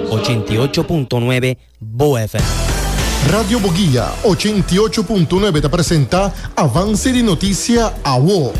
Ochenta i ocho punto nuebe Bo FM. Radio Boguia ochenta i ocho punto nuebe ta presenta Avance di Noticia Awo.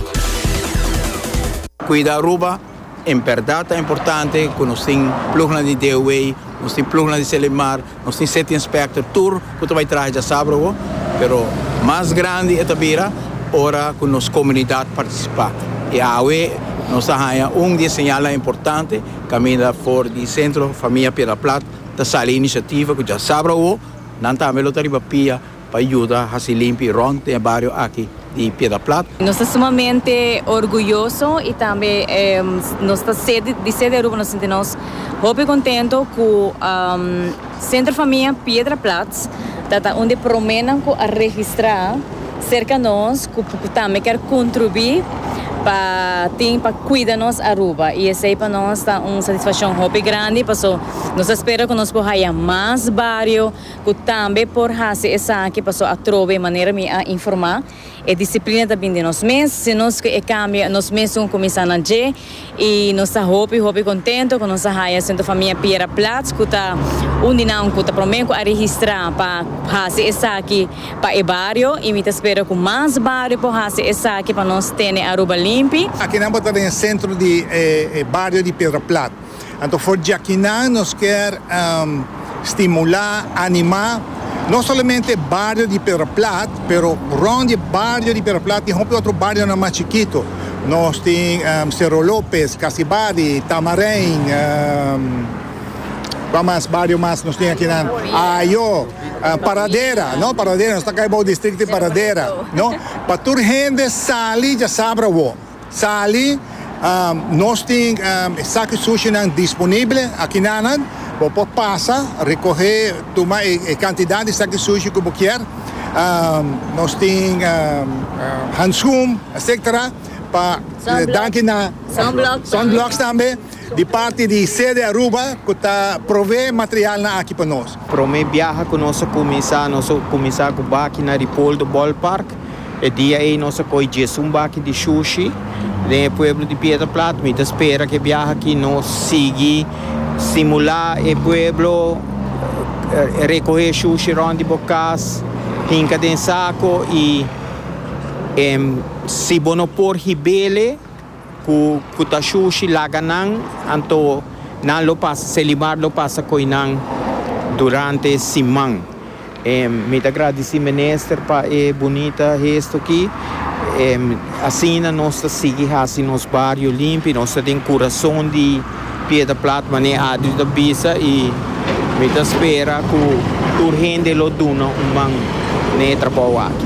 Cuida Aruba, en berdad ta importante cu nos tin plugnan di DOA, nos tin plugnan di Selimar. Nos tin sete inspector tur cu ta bay traha dja sabro awo, pero mas grandi e ta bira ora cu nos comunidad participa. Y awe nos a haya un di e señalnan importante caminda for di Centro Famia Piedra Plat ta sali iniciativa cu dja sabro awo nan tambe lo ta riba pia. Pa yuda hasi limpi rond den e bario aki di Piedra Plat. Nos ta sumamente orguyoso y tambe nos ta ser di ser di Aruba nos sinti nos hopi contento cu Centro Famia Piedra Plat ta ta un di e promenan cu a registra cerca nos cu tambe kier contribui pa tin pa cuida nos Aruba y esey pa nos ta un satisfaccion hopi grandi paso nos ta spera cu nos por haya mas bario. Ku tambe por hasi esaki paso atrobe manera mi a informá e disiplina ta bin di nos mes, si nos ke e kambio nos mesun kuminsá na dje i nos ta hopi hopi kontento ku nos a haya Sento Famia Piera Plats ku ta un di nan ku ta promé ku a registrá pa hasi esaki pa e bario i mi ta spera ku mas bario por hasi esaki pa nos tene Aruba limpi. Akinan bo ta den e sentro di e bario di Piedra Plat. Anto for djakinan nos kier stimula, anima, no solamente bario di Pedraplat pero rond di bario di Pedraplat tin hopi otro barionan mas chikito. Nos tin Cerro Lopez, Casibadi, Tamarein, kua mas bario mas nos tin akinan, Ayo, Paradera, no Paradera nos ta kai bou distrikto di Paradera, no. Pa tur hende sali dja sabra awo. Sali, Nos tin e saki sushinan disponible aki nanan. Bo por pasa, rikohé, tuma e kantidat di saki sushi ku bo kier. Nos tin hanskun, etsetera, pa danki na sunblocks tambe di parti di sede Aruba ku ta prove materialnan aki pa nos. Promé biaha ku nos a kuminsá, nos a kuminsá ku baki na Ripoldo Ballpark. E dia ei nos a koe djes un baki di shushi den e pueblo di Pieterplat. Mi ta spera cu e biaha aki nos sigui stimula e pueblo recohe shushi rond di bo cas, hinca den saco y si bo no por hibele. Ku ku ta shushi laga nan, anto nan lo pasa, Selimar lo pasa koi nan durante siman. Mi ta gradisi Minister pa e bunita hesto aki. Asina nos ta sigui hasi nos bario limpi, nos ta den kurason di Piedra Plat, mane Adri ta bisa i mi ta spera ku tur hende lo duna un man na e trabou aki.